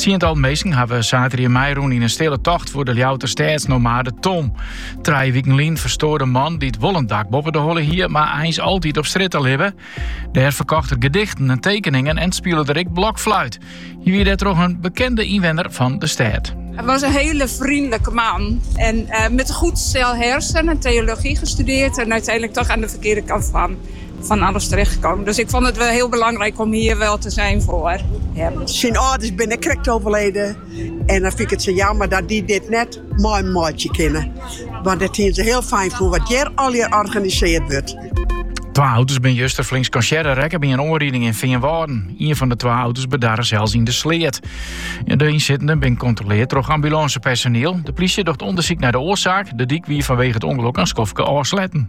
Tsientallen minsken hawwe saterdei meirûn yn in stille tocht foar de Ljouwter stêdsnomade Tom. Trije wiken lyn ferstoar de man dy't wol in dak boppe de holle hie, mar eins altyd op strjitte libbe. Dêr ferkocht er gedichten en tekeningen en spile er ek blokfluit. Hy wie dêrtroch in bekende ynwenner fan de stêd. Hij was een hele vriendelijke man en eh, met een goed stel hersen en theologie gestudeerd en uiteindelijk toch aan de verkeerde kant van. van alles terechtgekomen. Dus ik vond het wel heel belangrijk om hier wel te zijn voor hem. Syn âlders binne krekt overleden en dan fyn ik it sa jammer dat dy dit net meimeitsje kinne. Want dat hiene se hiel fijn fûn wat hjir allegear organisearre wurdt. Twa auto's bin juster flink skansearre rekke by in oanriding yn Feanwâlden. Ien fan de twa auto's bedarre sels yn de sleat. De ynsittenden bin kontrolearre troch ambulânsepersoniel. De plysje docht ûndersyk nei de oarsaak. De dyk wie fanwege it ûngelok in skoftke ôfsletten.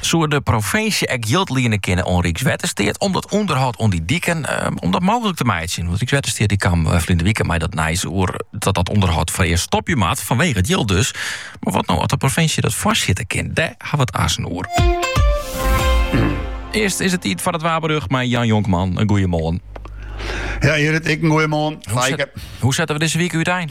Soe de provinsje ek jild liene kinne oan Rykswettersteat om dat ûnderhâld oan dy diken ehm, om dat mooglik te meitsjen? Want Rykswettersteat dy kaam eh, ferline wike mei dat nijs oer dat dat ûnderhâld foarearst stopje moat fanwege it jild dus. Mar wat no as de provinsje dat foarsjitte kin? Dêr hawwe we it aansen oer. Earst is it tiid foar it waarberjocht, mei Jan Jonkman, in goeie moarn. Ja, Gerrit, ek in goeie moarn. Hoe, hoe sette we dizze wike útein?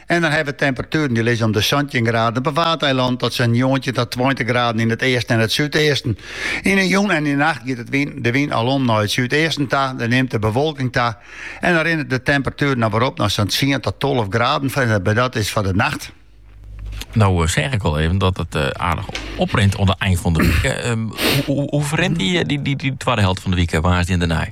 En dan hawwe we temperatueren dy lizze om de santjin graden op 'e Waadeilannen oant sa'n njoggentjin ta tweintich graden yn it easten en it súdeasten. Yn 'e jûn en yn 'e nacht giet it wyn, de wyn al om nei it súdeasten ta, der nimt de bewolking ta en dan rinne de temperatueren noch werom nei sa'n tsien ta tolve graden en dat dat is foar de nacht. No eh, seist al even dat it eh, aardich oprint oan it ein fan de wike. Ehm, hoe, hoe, hoe ferrint dy, eh, dy, dy, dy twadde helte fan de wike, woansdei en dêrnei?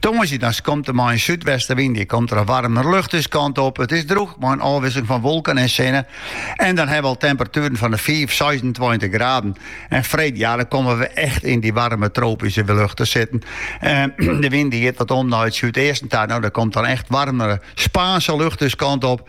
Tongersdei dan komt der mei in súdwestewyn, komt der in waarmere lucht ús kant op. It is drûch mei in ôfwikseling fan wolken en sinne. En dan hawwe we al temperatueren fan fiif-, seisentweintich graden. En freed, ja, dan komme we echt yn dy waarme tropyske lucht te sitten. De wyn dy giet dan om nei it súdeasten ta. No, dêr komt dan echt waarmere Spaanske lucht ús kant op.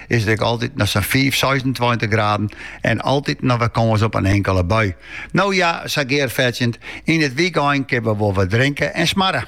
is it ek altyd noch sa'n fiif-, seisentweintich graden en altyd noch wer kâns op in inkele bui. No ja, sa gearfetsjend, yn it wykein kinne we wol wer drinke en smarre.